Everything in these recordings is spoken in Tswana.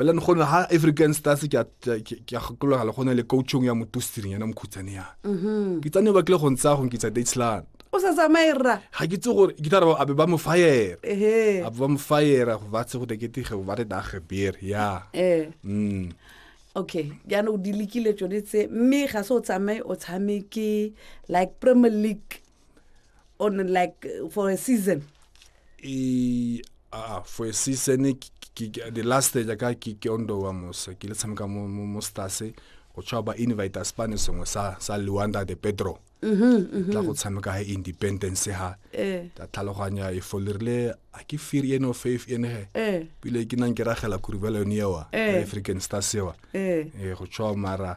bela ne gone ha african stars ke a gakologala go na le coachong ya motositseng yana mokhutsane yana mm-hmm. ke tsane ba kile go ntsaya go nkitsa datsland o sa tsamaye rra ga ke tse gore ke tla re abe ba mo fire abe ba mo fire go ba tse go tekete ge ba re dage beer ya eh. mm okay jaanong di lekile tsone tse mme ga se o tsamaye o tshameke like premier league on like for a season e a for a season the last stage ka ke ke ondo wa mosa ke le tshameka mo mo stars go tswa ba invite spane sengwe sa sa Luanda de Pedro mm-hmm, tla go mm-hmm. tshameka ha independence ha eh. ta tlhaloganya e folirile a ke fear ene of faith ene he eh. pile ke nang ke ragela kurubelo ne wa eh. African stars wa e go tswa mara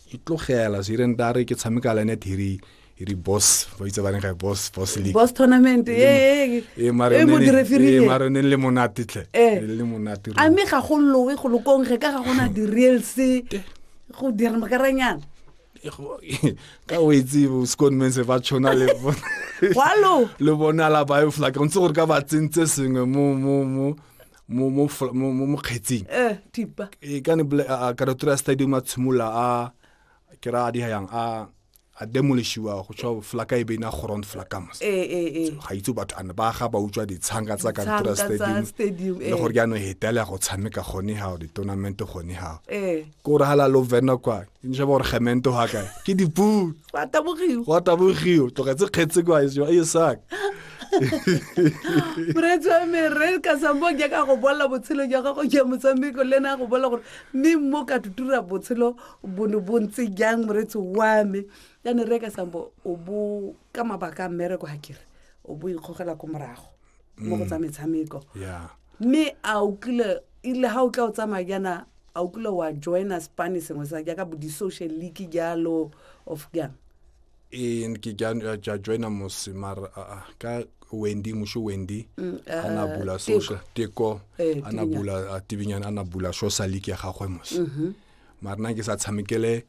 ke tlogela so ireng tare ke tshameka le ene thiri e re boss ba itse ba reng ga boss boss league boss tournament e e e mare e mo direfiri e mare ne le monate tle e le monate a me ga go lowe go lokong ge ka ga gona di real se go dira makaranyana ka o itse scone men se ba tshwana le bona wa lo le bona la ba e fla ke ntse gore ka ba tsentse sengwe mo mo mo mo mo fl- mo mo- mo kgetsing eh thipa e ka ne bole- a- a- ka retora stadium a tshimola a ke ra a di yang a a demolishiwa go tswa flaka e be na ground flakamos eh eh eh ga itse batho ane ba ga ba utswa ditshanga tsa ka Ditshanga retora tsa stadium stadium, le eh. gore ke ano hetela go tshameka gone ga di tournament gone ga eh ko re hala lo vena kwa nje bo re gemento ga kae ke dipuo wa tabogiwa wa tabogiwa tlogetse kgetse kwa e seo e sak moretsi wa me re ka sambo ke ka go bolela botshelo jwa gago jwa motshameko le ena a go bolela gore mme mo ka tutura botshelo bono bo ntse jang moretsi wa me yane re ka sambo o bo ka mabaka a mmereko ga kere o bo ikgogela ko morago mo go tsa metshameko yeah mme a o kile ile ga o tla o tsamaya jaana a o kile wa joina spane sengwe sa jaaka bo di-social league jalo of jang ee ke ja joina mose mara aa ka wendy musho wendy mm, a na uh, bula social teko eh, a na bula tibinyana a na bula social league ya gagwe mose mm-hmm. mara nna ke sa tshamekele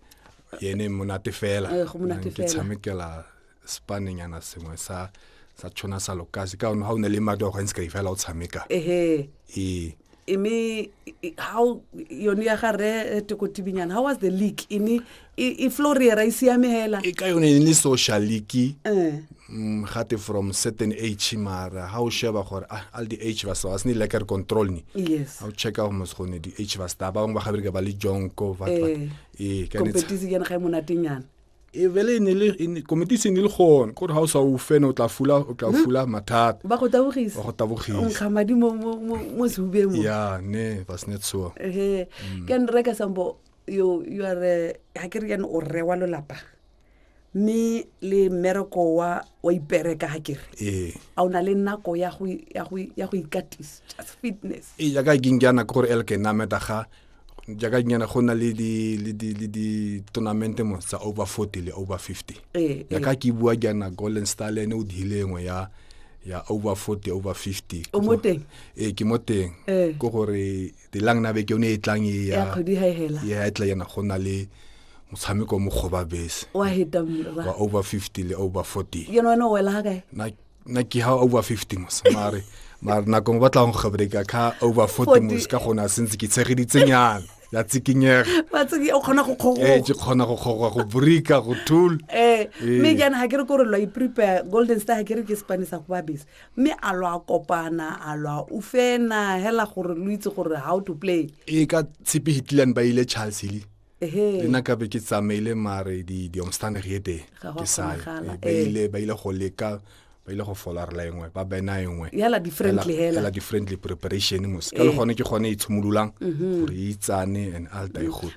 yene monate fela eh, ke tshamekela sepanenyana sengwe sa sa tshwana sa lokase ka one ga o ne le madi a go gantsi ka ifela o tshameka ehe ee imi i- how yone ya ga re tokotibinyana how was the league ini i floriera i siame hela e ka yone e ne le social league Eh, mm, gate from certain age mara ga o sheba gore ah, all the age ba sa ba se ne leker control ni yes ga o checka gore mos gone di age ba sta ba bangwe ba gabereka ba le jonko what- what. Eh, ee ka ne tsha- competition yana ga e monatenyana e bele e ne le e ne- komiti e se ne le gone gore ga o sa o fene o tla fula o tla fula mathata ba go tabogisa ba go tabogisa nkga madi mo- mo mo- mo sehubeng mo ya ne ba se ne tsoa ehe ke a nreka sambo yo you are ga ke re yane o rre wa lolapa mme le mmereko wa wa ipereka ga kere ee a o na le nako ya go ya go ya go ikatisa just fitness e jaaka ke nkeana ke gore elke nameta ga jaaka nyana go na le di-tournamente mo tsa over forty le over fifty eh, jaaka eh. ke bua jaana golden star le ene o diile engwe ya ya over forty over fifty o mo teng ee ke mo teng eh. ke gore dilang na beke o ne e tlang e ya e tla yana go na le motshameko mo kgoba bese wa over fifty le over forty yena wena o wela ga kae nna ke ha over fifty mos mare mare nako ngwe ba tlang go gabreka ka over forty mos ka gona sentse ke tshegeditsenyana ya tsikinyega o kgona go kgogoe eh, ke kgona go kgogoa go borika go tool eh, eh. mme jaana ga ke re ko re lwa iprepare golden star ga ke re ke sepanisa go babese mme a lwa kopana a lwa o fena hela gore lo itse gore how to play ee ka tshepe hitland ba ile charles hile le nna kabe ke tsamaile mare diomstandig e teng ke sa ile ba ile go leka ba ile go folarela engwe ba bena engwe yala differently hela yala differently preparation mos ka le gone ke gone e tshimololang gore e itsane and all die good